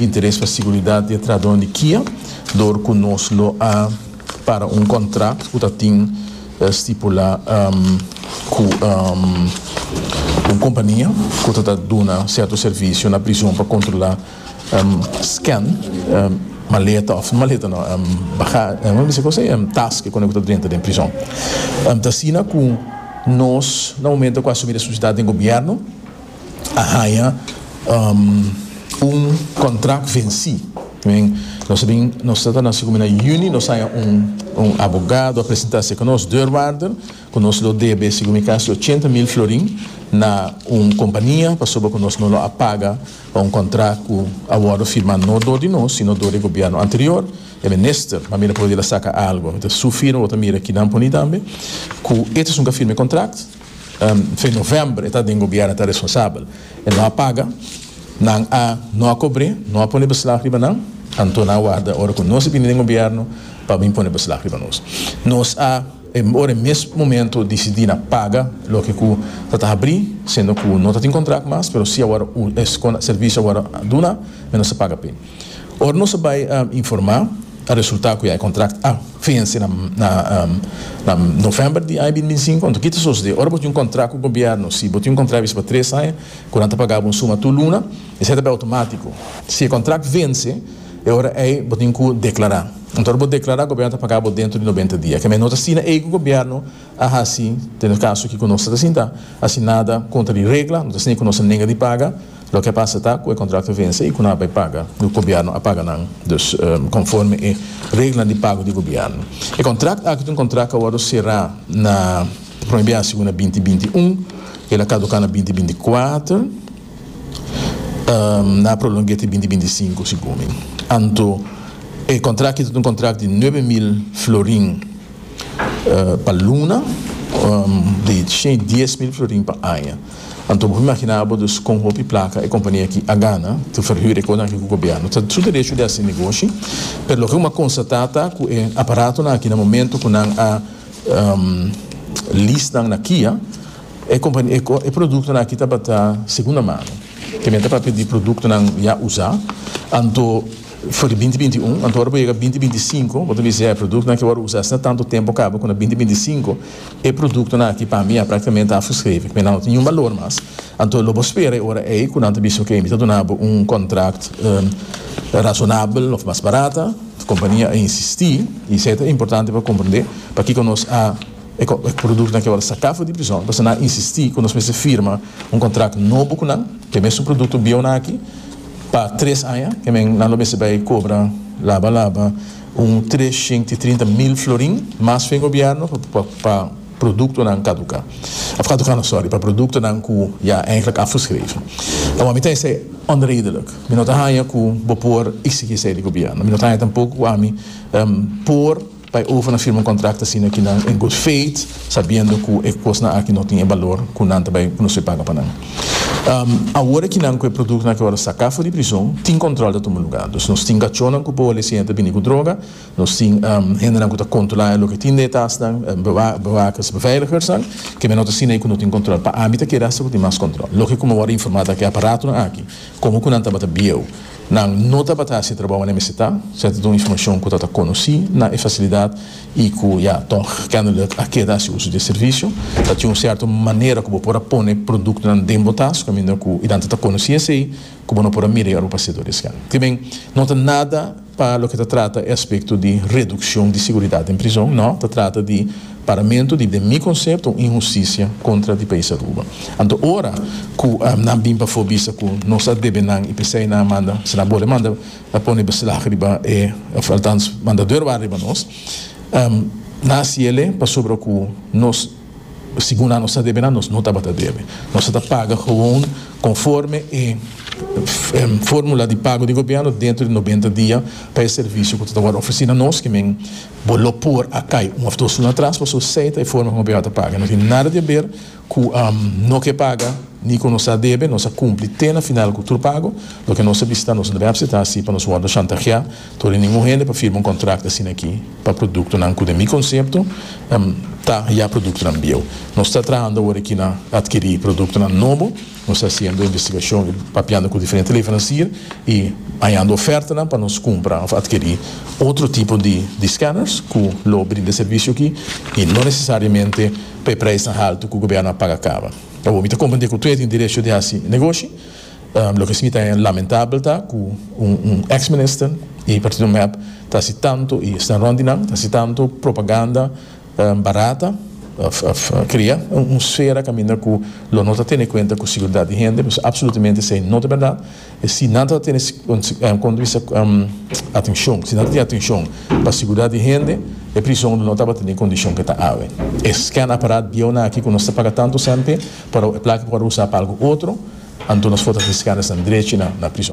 Interes pa siguridat di e trahadónan di Kia dor ku nos lo a para un kontrakt ku ta tin stipulá ku un kompania ku ta ta duna sierto servisio na prizon pa kontrolá scan maleta òf no maleta no baga bo mester kosé tas ke kone ku ta drenta den prizon ta asina ku nos na momento ku asumí responsabilidat den gobièrnu. a haña un contract venci nos bin nos ta ta nasi na juni nos haña un abogado a presenta seca nos deurwaarder cu nos lo debe segun mi casi ochenta mil florin na un compania pasobra cu nos no lo a paga pa un contract cu a wordo firma no door di nos sino door di gobierno anterior e minister pa mi ta pudi la saca algo mi ta su firma bo ta mira kinan poni tambe cu e ta esun cu a firma e contract. Fin novèmber e ta den gobièrnu e ta responsabel. E no a paga, nan a no a kobr'é, no a pone beslag riba nan, anto nan a warda ora ku nos a bini den gobièrnu pa bin pone beslag riba nos. Nos a ora e mes momento disidí na paga loke ku ta ta habrí, siendo ku no ta tin kontrakt mas, pero si awor e servisio awor a duna, mi nos a paga p'e. Ora nos a bai informá, a resultá ku ya e kontrakt a fense na novèmber di aña binti binti sinku. Anto ki ta sosodé? Ora bo tin un kontrakt ku gobièrnu, si bo tin un kontrakt bisti pa tres aña ku nan ta pagá bo un suma tur luna, esei ta bai outomátiko. Si e kontrakt fense, e ora ei bo tin ku deklará. Anto ora bo deklará, gobièrnu ta pagá bo dentro di nobenta dia. Kemei no ta asina ei ku gobièrnu, A hasi den e kaso kiko nos ta ta sinta hasi nada kontra di regla, no ta siña ku nos a nega di paga. Loke a pasa ta ku e kontrakto a vense i ku nan a bai paga, ku gobièrnu a paga nan dus konforme e reglanan di pago di gobièrnu. E kontrakt aki ta un kontrakt ku a wòrdu será na prome biaha segun na binti binti i un, el a kaduká na binti binti i kuater, nan a prolong'é te binti binti i sinku si gumi. Anto e kontrakt aki ta un kontrakt di nuebe mil florin. pa luna di shen y dies mil florin pa aña. Anto bo por imagina bo dus con hopi placa e compania aki a gana ta verhuur e cosnan aki cu gobierno. Ta su derecho di haci negoshi, pero loke bo a constata ta cu e aparatonan aki na momento cu nan a lease nan na Kia e productonan aki tabata segunda mano, te mester para pidi productonan ya usa, anto. For di binti binti un, anto ora bo yega binti binti sinku bo ta bisa ya e produktonan aki wou usa asina tantu tempu kaba ku na binti binti sinku e produktonan aki pa mi ya praktikamente a fuskrevi ku nan no tin niun balor mas anto lo bo spera e ora ei ku nan ta bisa oke mi ta duna bo un kontrakt rasonabel òf mas barata kompania a insisti i esei ta importante pa komprende pakiko nos a e produktonan aki awor a saka for di prison pasobra nan a insisti ku nos mester firma un kontrakt nobo ku nan ku e mesun produkto bieunan aki. Pa tres aña e men nan lo mester bai cobra laba laba un trescienti e trinta mil florin mas fen gobierno pa productonan caduca, of caduca no sorry, pa productonan cu ya eigenlijk afgeschreven. Awor mi ta esey onredelijk. Mi no ta haya cu bo por exigi esey di gobierno. Mi no ta haya tampoco cu ami por. Pa e overnan firma un kontrakto asina aki nan in good faith, sabiendo ku e kosnan aki no tin e balor ku nan ta bai ku nos bai paga pa nan. Awor aki nan ku e produktonan aki wòrdu saká for di prizon, tin kòntròl ta tuma lugá. Dus nos tin kachónan ku por lesiña ta bini ku droga, nos tin hendenan ku ta kontrolá loke tin den e tasnan, bewakers, beveiligersnan, kemey no ta asina ei ku no tin kòntròl. Pa ami ta kere asta ku tin mas kòntròl. Loke ku mi a wòrdu informá ta ke aparatonan aki, komo ku nan tabata bieu. Nan no tabata hasi trabou ane mester ta, se ta dun informacion cu ta ta conoci na e facilidad y cu ya tog kennelijk a keda haci uso di e servicio. Ta tin un cierto manera cu bo por a pone productonan den bo tas caminda cu y tanto ta conoci esey cu bo no por a mira y ora bo pasa e doris can. Tibin no ta nada pa loke ta trata e aspecto di reduccion di seguridad den prizon, no, ta trata di. Paramentu di den mi konsepto un inhustisia kontra di Pais Aruba. Anto ora ku nan bin pafó bisa ku nos a debe nan i p'esei nan a manda si nan bole manda a pone beslag riba e òf altans manda dor wak riba nos nan a siele pasobra ku nos segun nan nos ta debe nan nos no tabata debe nos a ta paga gewoon konforme e fórmula di pago di gobièrnu dentro di nobenta dia pa e servisio ku ta wòrdu ofresí na nos kimen Bo lo por a kai un of dos luna atras paso esey ta e forma ku Abiatar ta paga. No tin nada di haber ku no ke paga ni ku nos a debe. Nos a kumpli te na final ku tur pago. Loke nos a bisita nos no debe apseta asi pa nos wordo shantaheá tur di ningun hende pa firma un kontrakt asina aki pa produktonan ku den mi konsepto ta ya produktonan bieu. Nos ta trahando awor aki na adkirí produktonan nobo. Nos ta hasiendo investigashon i papiando ku diferente leveransier i hañando ofertanan pa nos kumpra òf atkirí otro tipo di skanners ku lo brinda e servisio akí i no nesesariamente pa e preisnan haltu ku gobiernu a paga kaba. Awor mi ta komprendé ku tur a tin derecho di hasi negoshi. Loke si mi ta haña lamentabel ta ku un eks minister di partido mep ta hasi tantu i sta rònt di nan ta hasi tantu propaganda, Barata, Cria un sfera caminda cu lo no ta tene cuenta cu seguridad di hende, pues absolutamente esey no ta berdad. Si nan ta tene punto di vista atencion, si nan ta tin atencion pa seguridad di hende e prison lo no tabata den e condicion cu e ta awe. E scan apparat bieu nan aki cu nos ta paga tanto cente pero e placa por usa pa algo otro, anto nos for ta tin scan esnan drechi na prison.